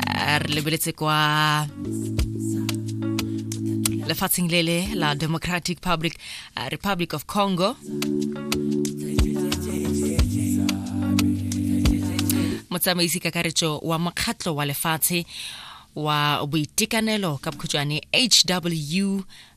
eh, re lebeletse kwa lefatsheng le le la democratic public uh, republic of congo motsamaisi kakaretso wa mokgatlho wa lefatshe wa boitekanelo ka bokhutšwane hw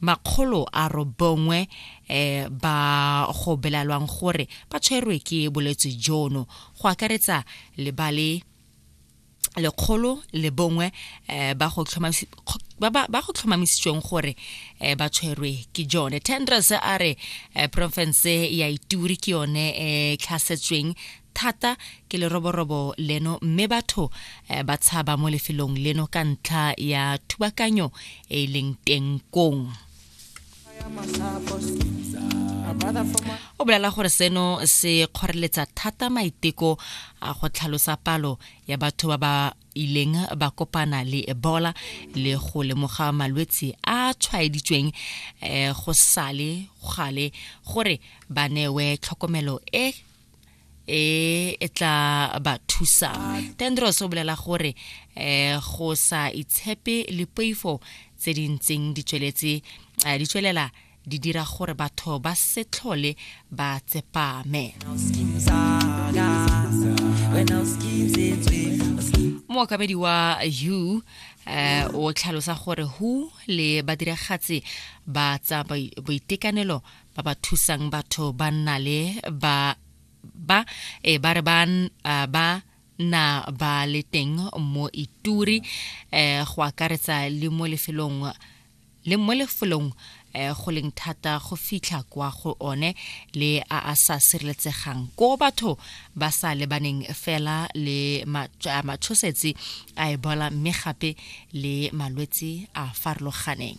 makgolo a robongwe eh, ba go belalwang gore ba tshwerwe ke bolwetse jono go akaretsa le ba le lekgolo le bongwe eh, ba go tlhomamisitsweng gore eh, ba tshwerwe ke jone tendres a re eh, porofense ya ituri ke yone e tlhasetsweng thata ke leroborobo leno mme batho eh, ba tshaba mo lefelong leno ka ntlha ya thubakanyo e e leng teng kong o bolela gore seno se kgoreletsa thata maiteko a go tlhalosa palo ya batho ba ba ileng ba kopana le ebola le go lemoga malwetse a tshwaeditsweng um go sale gale gore ba newe tlhokomelo e e e tla ba thusang tendros o bolela gore um go sa itshepe le poifo tse di ntseng di tsweletse um di tswelela di dira gore batho ba se tlhole ba tsepame mookamedi wa u eh o tlhalosa gore hu le badiragatsi ba tsa boitekanelo ba ba thusang batho ba nna le ba ba e ba re ba ba na ba le teng mo ituri eh go akaretsa le mo lefelong le mo lefelong eh go leng thata go fitlha kwa go one le a a sa sireletsegang ko batho ba sa lebaneng fela le matshosetsi a ebola mme gape le malwetse a farologaneng